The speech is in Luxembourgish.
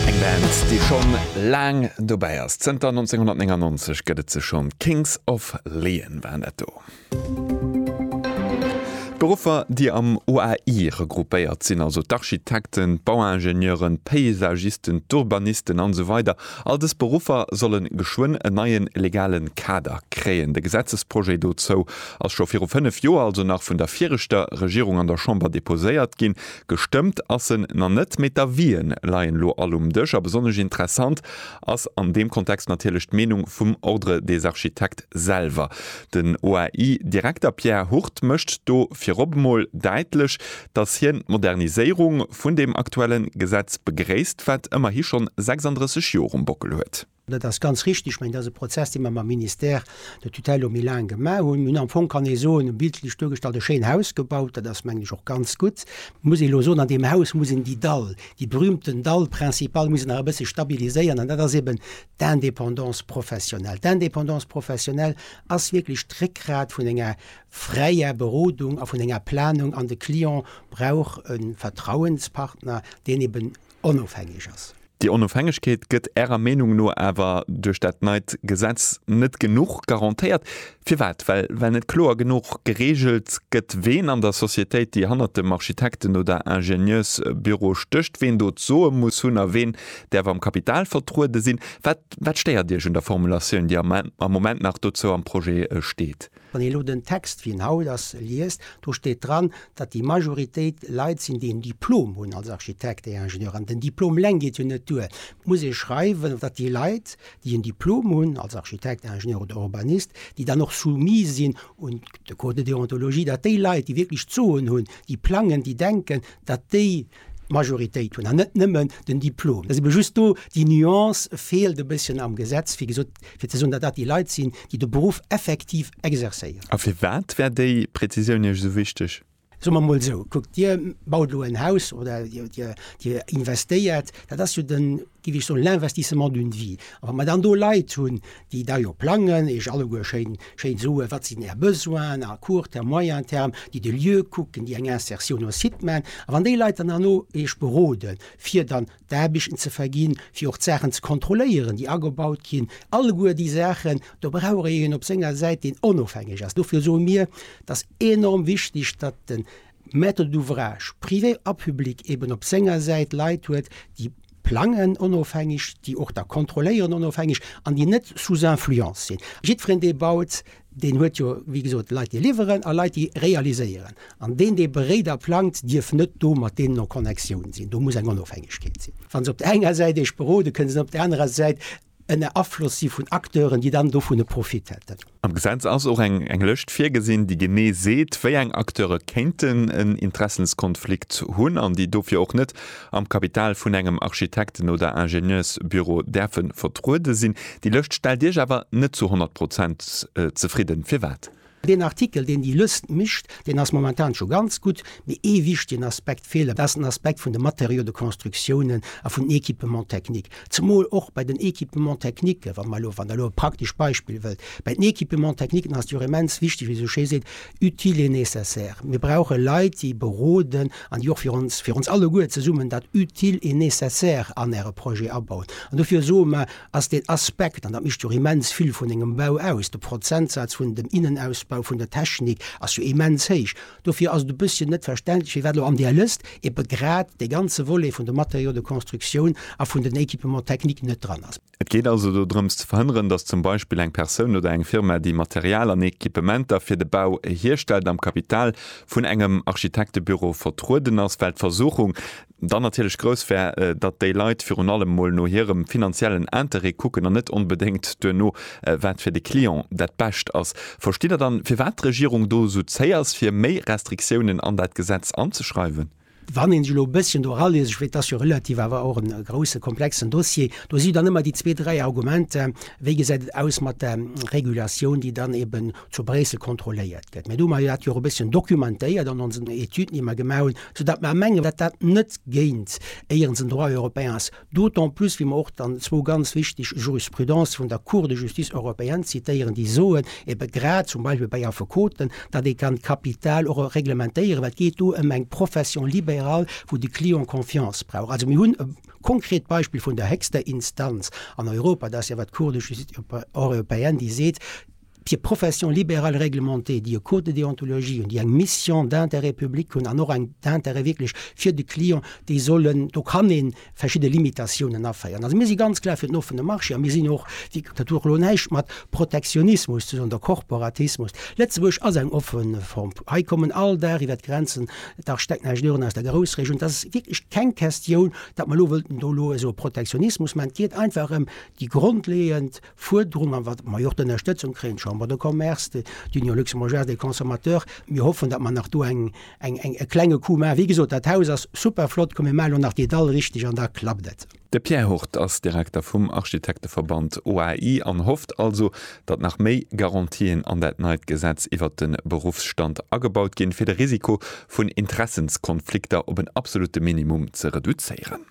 Eng Band, déi schonn laang dobäi ass. Zënter 1999 gëtt et se schonn. D'Kings of Leon waren dat do. D'Beruffer, déi am OAI regroupéiert sinn, also d'Architekten, d'Bauingenieuren, d'Paysagisten, d'Urbanisten an esou weider, all dës Beruffer solle geschwënn en neie legale Kader kréien. De Gesetzesprojet dozou ass scho viru fënnef Joer, also nach vun der viregter Regierung, an der Chamber deposéiert ginn. Gestëmmt ass en na net, mee d'Avien leien lo all um Dësch a besonnesch interessant ass an deem Kontext natierlech d'Meenung vum Ordre des Architectes selwer. Den OAI-Direkter Pierre Hurt mécht do virop emol däitlech, datt hien d'Moderniséierung vun deem aktuellen Gesetz begréisst, wat ëmmerhi schonn 36 Joer um Bockel huet. Dat ass ganz richtig. Ech mengen, dat ass e Prozess, dee mer mam Ministère de tutelle lo méi laang gemaach hunn. Mir hunn am Fong, kann ee soen, bildlech duergestallt, e schéin Haus gebaut. Dat ass, mengen ech, och ganz gutt. Et muss ee lo soen, an deem Haus muss een déi Dall, déi berühmten Dall principal muss een nach e bësse stabiliséieren, an dat ass eben d'Indépendance professionnelle. D'Indépendance professionnelle ass wierklech d'Réckgrat vun enger fräier Berodung a vun enger Planung, an de Client brauch e Vertrauenspartner, deen eben, onofhängeg ass. Déi Onofhängegkeet gëtt Ärer Meenung no awer duerch dat neit Gesetz net genuch garantéiert. Firwat? Well well net kloer genuch gereegelt gëtt, ween an der Societéit, déi hannert dem Architekten oder Ingenieursbüro stécht, ween do d'Soe muss hunn a ween däerf am Kapital vertruede sinn. Wat wat stéiert Iech un der Formulatioun, déi am Moment nach dozou am Projet steet? Wann een elo den Text, wéi en haut ass, liest, do steet dran, datt déi Majoritéit Leit sinn, déi en Diplom hunn als Architekt et Ingenieur. An den Diplom eleng geet jo net duer. Et muss ee schreiwen, datt déi Leit, déi en Diplom hunn als Architekt, Ingenieur oder Urbanist, déi dann och soumis sinn un de Code de déontologie, datt déi Leit, déi wierklech d'Soen hunn, déi plangen, déi denken, datt déi D'Majoritéit hunn, an net nëmmen den Diplom. Et ass ebe just do, déi Nuance feelt e bësschen am Gesetz, wéi gesot, fir ze soen, datt dat déi Leit sinn, déi de Beruff effektiv exerzéieren. A firwat wär déi Prezisioun Iech esou wichteg? Soe mer emol esou, Kuckt, Dir baut elo en Haus oder Dir investéiert. Dat ass jo de giff ech soen, l'investissement d'une vie. A wa mer dann do Leit hunn, déi da jo plangen, iech alleguer schéin, schéin soen, wat sinn är Besoinen à court terme, moyen terme, déi de Lieu kucken, déi eng Insertion no Site man, a wann déi Leit dann herno iech beroden, fir dann d'Aarbechten ze verginn, fir och d'Saachen ze kontrolléieren, déi agebaut ginn, alleguer déi Saachen, do brauch ee een op senger Säit, deen onofhängeg ass. Dofir soe mir, et ass enorm wichtig, datt den Maître d'ouvrage, privé a public, eben op senger Säit Leit huet, déi plangen onofhängeg, déi och da kontrolléieren onofhängeg an déi net sous influence sinn. Jiddwereen, dee baut, deen huet jo, wéi gesot, Leit, déi liwweren a Leit, déi realiséieren. An deen, dee beréit a plangt, dierf net do mat deenen en Connectioun sinn. Do muss eng Onofhängegkeet sinn. Wa se op der enger Säit iech berode kënnen se net op der anerer Säit ënner Afloss si vun Acteuren, déi dann dovun e Profit hätten. Am Gesetz ass och eng Lëscht virgesinn, déi genee seet, wéi eng Acteure kéinten en Interessenskonflikt hunn an déi dofir och net am Kapital vun engem Architekten oder Ingenieursbüro däerfe vertruede sinn. Déi Lëscht stellt Iech awer net zu honnert Prozent zefridden. Firwat? Deen Artikel, deen déi Lëst mécht, deen ass momentan scho ganz gutt, mee ee wichtigen Aspekt feelt, dat ass den Aspekt vun de Matériaux de constructiounen a vun den Équipements techniques. Zemol och bei den Équipements techniquen, wa mer elo, wann Der elo e praktesch Beispill wëllt, bei den Équipements techniquen ass et jo och immens wichtig, wéi ee esou schéi seet, utile et nécessaire. Mir brauche Leit, déi beroden an déi och fir ons, fir ons alleguer zesummen, dat utile et nécessaire an Äre Projet abauen. An dofir soe mer, ass deen Aspekt, an dat mécht jo immens vill vun engem Bau aus, de Prozentsaz vun dem Innenausbau vun der Technik ass jo immens héich. Dofir ass et e bësschen net verständlech, firwat elo an där Lëst eebe grad dee ganze Volet vun de Matériaux de construction a vun den Équipements techniques net dran ass. Et geet also dodrëms ze verhënneren, dass zum Beispill eng Persoun oder eng Firma, déi Material an Équipementer fir de Bau hierstellt, am Kapital vun engem Architektebüro vertrueden ass, well d'Versuchung, dann natierlech grouss wär, datt déi Leit virun allem mol no hirem finanziellen Interêt kucken an net onbedéngt duerno, wat fir de Client dat Bescht ass. Verstitt Der dann, firwat d'Regierung do esou zéi ass, fir méi Restriktiounen an dat Gesetz anzeschreiwen? Wann ee sech elo e bësschen do eralëest, ech weess, et ass jo relativ awer och e grousse, komplexen Dossier, do si dann ëmmer déi zwee, dräi Argumenter, Wéi gesäit et aus mat der Regulatioun, déi dann eeben zu Bréissel kontrolléiert gëtt. Mä do hu mer dat jo och e bësschen dokumentéiert an onsen Etüden, déi mer gemaach hunn, soudatt mer mengen, datt dat net géint éierens den Droit européen ass, d'autant plus wéi mer och dann zwou ganz wichteg Jurisprudencë vun der Cour de justice européenne zitéieren, déi soen, ebe grad zum Beispill bei Affekoten, datt ee kann d'Kapital och reglementéieren, well et geet do ëm eng Profession libérale, wou de Client Confiance brauch. Also mir hunn e konkret Beispill vun der héchster Instanz an Europa, dat ass jo awer d'Cour de justice européenne, déi seet, Fir Professions libérales réglementées, déi e Code de déontologie hunn, déi eng Mission d'intérêt public hunn an och eng d'intérêt wierklech fir de Client, déi sollen, do kann ee verschidde Limitatiounen aféieren. Also mir si ganz klar fir den offene Marché a mir sinn och, dat huet och elo näischt mat Protektionismus ze soen oder Korporatismus. Lëtzebuerg ass eng offen Form. Hei kommen all Dag iwwert d'Grenzen dach stäck näischt Euren aus der Groussregioun. Dat ass wierklech keng Question, datt mer elo wëllten do elo esou e Protektionismus maachen. Et geet einfach ëm déi grondleeënd, Fuerderung an wat mer jo och d'Ënnerstëtzung kréien, d'Chambre de Commerce, d'Union Luxembourgeoise des Consommateurs, mir hoffen, datt mer nach do eng, eng, eng, e klenge Coup maachen. Wéi gesot, dat Haus ass super flott, komm mir maachen elo nach déi Dall richteg an da klappt et. De Pierre Hurt ass Direkter vum Architekteverband OAI an hofft also, datt nach méi Garantien an dat neit Gesetz iwwert de Beruffsstand agebaut ginn, fir de Risiko vun Interessenskonflikter op en absolutte Minimum ze reduzéieren.